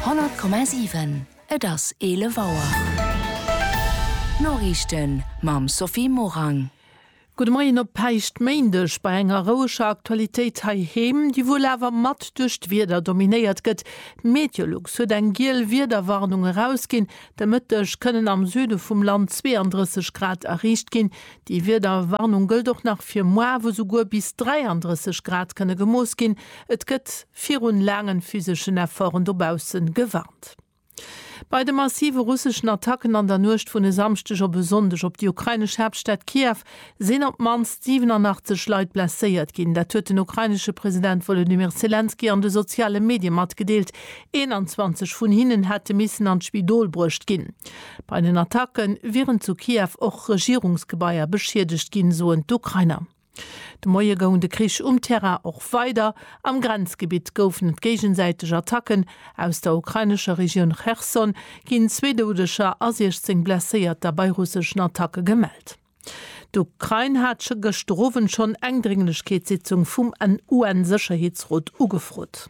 100,7 Et ass 11 Auer. D'Noriichten mam Sophie Morang. Gudde Moien op Päischtméindeg bei enger roueger Aktualitéit heiheem, déi wuel awer mat duerch d'Wieder dominéiert gëtt. D'Meteolux huet eng giel Wiederwarnung erausginn. De Mëtteg kënnen am Süde vum Land 32 Grad erreecht ginn. Déi Wiederwarnung gëllt och nach fir muer, wou souguer bis 33 Grad kënne gemooss ginn. Et gëtt. virun laangen physeschen Efforten dobaussen gewarnt. Bei de massive russeschen Attacken an der Nuecht vun e Samschdeg op e Sonndeg op déi ukrainesch Haaptstad Kiew sinn op d'mannst 87 Leit blesséiert ginn. Dat huet den ukrainesche President Wolodymyr Selenskyj an de soziale Medie matgedeelt. 21 vun hinnen hätte missen an d'Spidol bruecht ginn. Bei den Attacke wieren zu Kiew och Regierungsgebaier beschiedegt ginn, soen d'Ukrainer. De Moie goung de Krich um Terrain och weider. Am Grenzgebitt goufen et géigesäiteg Attacken. Aus der ukrainescher Regioun Cherson ginn zwee Doudeger a 16 Blesséierter bei russeschen Attacke gemellt. D'Ukrain hat gëschter Owend schonn eng Drénglechkeetssitzung vum UN-Sécherheetsrot ugefrot.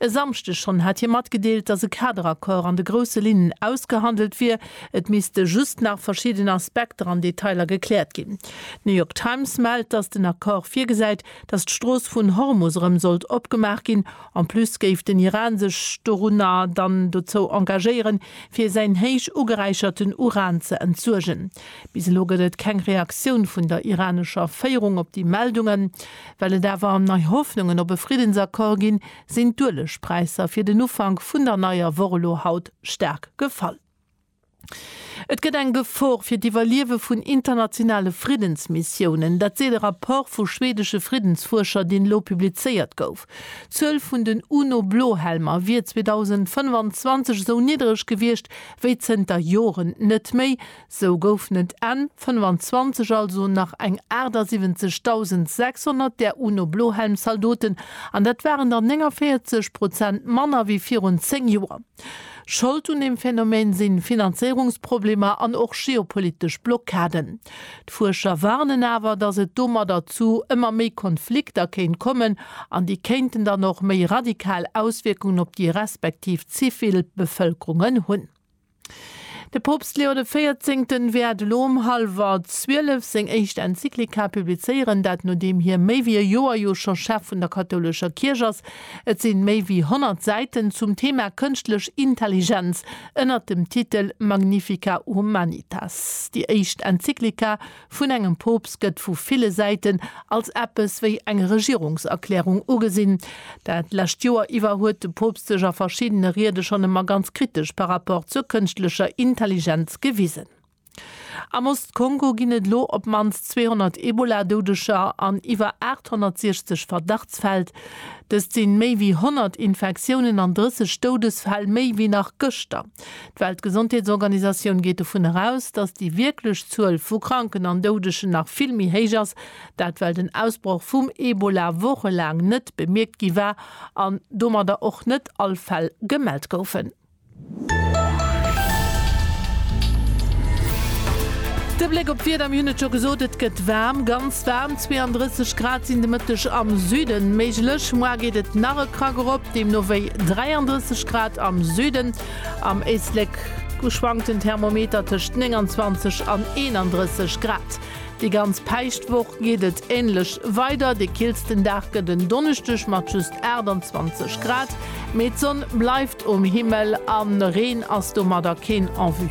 E Samschdeg schonn hat hie matgedeelt, datt e Kaderaccord an de grousse Linnen ausgehandelt wier, et misste just nach verschidden Aspekter an Detailer gekläert ginn. D'New York Times mellt, datt den Accord virgesäit, datt d'Strooss vun Hormus erëm sollt opgemaach ginn. En plus géif den Iran sech dorunner dann dozou engagéieren, fir säin héich ugeräicherten Uran ze entsuergen. Bis elo gëtt et keng Reaktioun vun der iranescher Féierung op déi Meldungen. Well et awer am nei Hoffnungen op e Friddensaccord ginn, sinn d'Uelegpräisser fir den Ufank vun der neier Woch elo haut staark gefall. Et gëtt eng Gefor fir d'Iwwerliewe vun internationale Friddensmissiounen. Dat seet e Rapport vu schwedesche Friddensfuerscher, deen elo publizéiert gouf. D'Zuel vun den UNO-Blohelmer wier 2025 esou niddreg gewiescht wéi zënter Joren net méi, Sou goufen et Enn 25 also nach eng 78.600 där UNO-Blohelm-Zaldoten, an dat waren der 49 Prozent manner wéi virun 10 Joer. Schold un deem Phänomen si Finanzéierungsproblemer an och geopolitesch Blockaden. D'Fuerscher warnen awer, datt et domadder zu ëmmer méi Konflikter kéint kommen, an déi kéinten dann och méi radikal Auswierkungen op déi respektiv zivil Bevëlkerungen hunn. De Poopst Leo de Véierzéngten wäert elo um hallwer 12 seng éischt Enzyklika publizéieren, dat nodeem hie méi wéi e Joer jo scho Chef vun der kathoulescher Kierch ass. Et sinn méi wéi 100 Säiten zum Thema kënschtlech Intelligenz ënnert dem Titel Magnifica Humanitas. Déi éischt Enzyklika vun engem Poopst gëtt vu ville Säiten als eppes wéi eng Regierungserklärung ugesinn. Dat lescht Joer iwwer huet de Poopst sech a verschiddene Riede schonn ëmmer ganz kritesch par Rapport zur kënschtlecher Intelligenz gewisen. Am Ost-Kongo ginn et elo op d'mannst 200 Ebola-Doudeger an iwwer 860 Verdachtsfäll. Dëst si méi wéi 100 Infektiounen an 30 Doudesfäll méi wéi nach gëschter. D'Weltgesondheetsorganisatioun geet dovun eraus, datt déi wierklech Zuel vu Kranken an Doudegen nach vill méi héich ass. Dat well den Ausbroch vum Ebola wochelaang net bemierkt gi war an domadder och net all Fäll gemellt goufen. De Bléck op d'Wieder, Mir hunn et scho gesot, et gëtt waarm, ganz waarm, 32 Grad sinn de Mëtteg am Süden méiglech. Moar geet et nach e Krack erop, deemno wéi 33. Grad am Süden. Am Éislek gu schwankt den Thermometer tëscht 29 an 31 Grad. Déi ganz Päischtwoch geet et änlech weider. De killsten Dag gëtt en Donneschdeg mat just 28 Grad, mee d'Sonn bleift um Himmel a Reen ass domadder keen en vue.